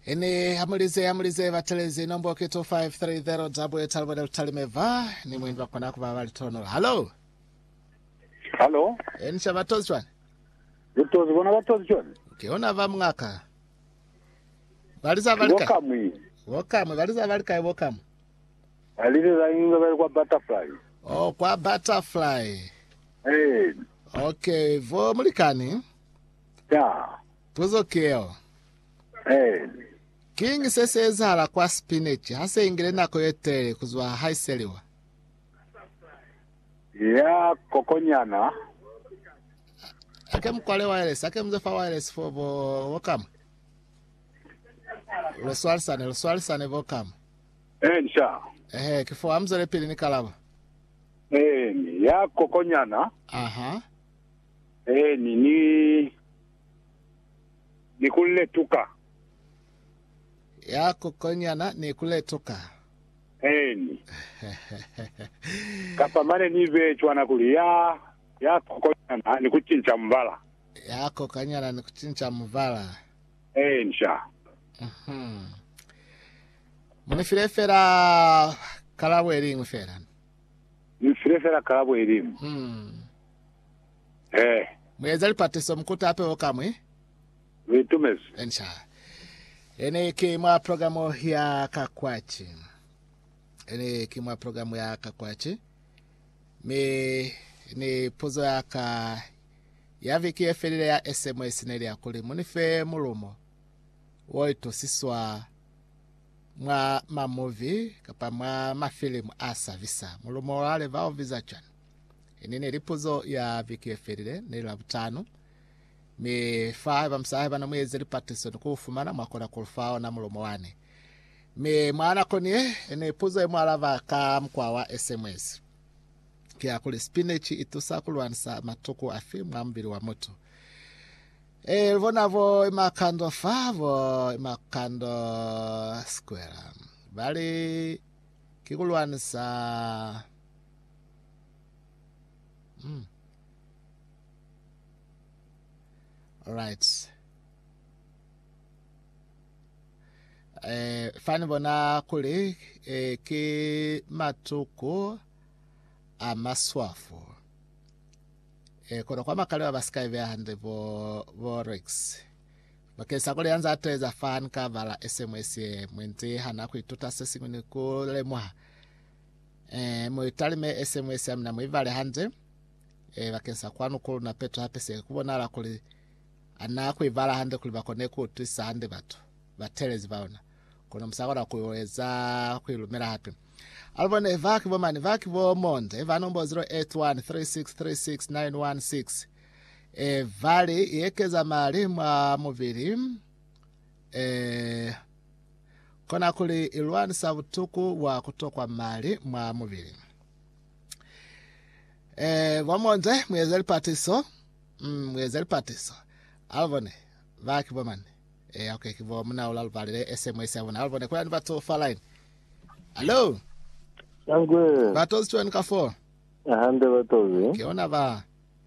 Ini hamulize hamulize batelezi nombo ke 2530 dabu etali bone lutalime va ni mwini bakona kuba bali tonola halo Halo, eni sha batozi shwani butozi bona batozi choni. ke ona ba mngaka baliza bali kai Wakamwi. bokamwe baliza bali kai bokamwe Alile la inga bali kwa butterfly. oh kwa butterfly Eh, okay vo mulikani ya. Puzo keo. Eeni. Kiñi se si ezahala kwa spinach ha se ingile nako ye telele ku zwa ha i seliwa? Ya kokonyana. Ake mu kwale waelesi, ake muze fa waelesi fo bo, bo kamwe. Lo swalisane, lo swalisane bo kamwe. Eeni, sha. Ehe, kifo ha muzwele pili ni kalaba. Eeni, ya kokonyana. Aha. Eeni, ni ni ku letuka. Ya kukonyana ni ku letuka. Eeni. Kapa mane ni be cwana kuli, ya, ya kukonyana ni ku cinca mubala. Ya kukonyana ni ku cinca mubala. Eeni, sha. Mhm. Mu ni file fela kalabo iliñwi fela. Ni file fela kalabo iliñwi. Hmm. He. Mueza lipatiso mukuta peo kamwi. Lu itumezi. Ensha. Ene ki mwa program ya kakwaci. Ene ki mwa program ya kakwaci. Mi ni puzo ya ka ya viki ye felile ya SMS neli ya kuli munife mulumo wo itusiswa mwa mamuvi kapa mwa mafilimu a sabisa. Mulumo wa leva o biza cwani? Ini neli puzo ya viki yefelile, neli Labutanu, mi fa haiba musahai bana mueze lipatiso ni kuufumana, mwakona kulufa ona mulumo wani. Mi mwa nako ni ye, ni puzo ye mualaba ka mukwa wa SMS. Ki ya kuli, Spinach itusa kulwanisa matuku afi mwa mubili wa mutu? E, lubona bo Imakando fa, bo Imakando Square. Bali, ki kulwanisa Mm. Alright. Eh, fani bona kuli eh, ki matuku a maswafu eh, kono kwa makaliwa ba sika ibeya hande bo, bo rex bakeng sa kuli yanza ateza fan ka bala sms ye mwenti hana ku ituta se singwe ni ku lemuha Eh, mu italime ese mu ese amina mu ivale hande. Eh, bakeng sa kwanu ku luna peto hape se ku bonala kuli ana ku ivala hande kuli bakone ku utwisa hande batu batelezi ba ona. Kono musakona ku eza ku ilumela hape. Alubone eva kibo mani, va kibo monde, eva nombo 0813636916. Evali yekeza mali mwa mubili Ee, kona kuli i lwanisa butuku bwa ku tokwa mali mwa mubili. Ee, bo Monze, mu eze lipatiso. Mm, mu eze lipatiso. Alubone, ba ki bo mani. Ee, okay, ki bo muna ola lubalele SMS ya bona. Alubone, kuna ni batu fa line. Hello? Sangwe. Batozi chweni ka fo. Hande batozi. Ke ona ba.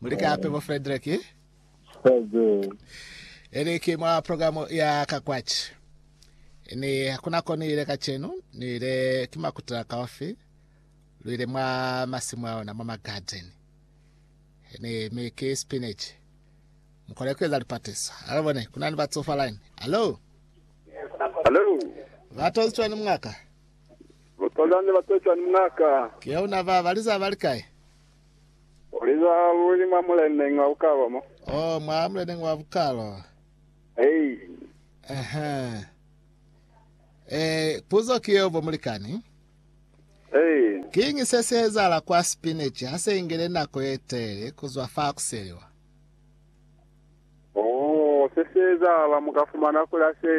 Muli kape bo Frederick? Saze. Eli ki mwa programu ya ka kwaci. Ni hakuna ko ni ile kacenu, ni ile ki makuta kaofi. Lu ile mwa masimu a ona mwa magadeni. Ni mi ki spinach. Mukole kueza lipatiso. Alo bone, kuna ni batsofa line. Alo? Hello. Vatozi cwani mungaka? Bapazani ne bapeza ni Ng'aka. Ki ya una ba ba liza ba li kai? U liza luli mwa muleneñi wa bukalo mo. Oh, mwa muleneñi wa bukalo. Hei. Uh-huh. Eh, puzo ki yeo, bo mulikani. Hei. Kiñi se si ezahala kwa spinach ha se ingele nako ye telele kuzwa fa kuseliwa? Oh, se si ezahala, mu ka fumana kula se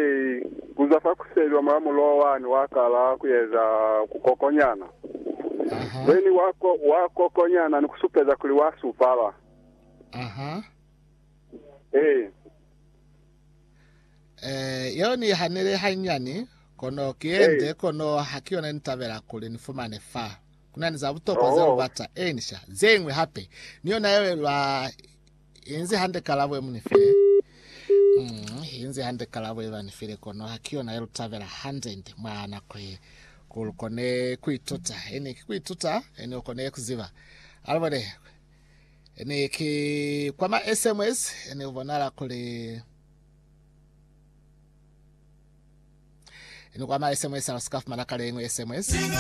ku zwa fa kuseli omula muloho wani wa kala ku eza kukokonyana. Aha. Then wa ko, wa kokonyana ni ku supeza kuli wa supala. Aha. Eh. Eh, yeo ni i hanile hanyani, kono ki ye Eh. nde, kono ha ki yona ni tabela kuli ni fumane fa. Ku na ni za butokwa ze Oh. lu bata, eeni sha. Ze ñwi hape, ni yona yeo ye lwa Inzi hande kalabo yemunifile. Mm, inzi hande kalabo yebanifile kono hakiyona yelutabela hande nde mwa nako ye. Kulukone kuituta, ene ki kuituta, ene ukone kuziba. Alibone, ene ki kwa ma SMS, ene ubonala kuli ene kwa ma SMS alusika fumana kale engwe SMS.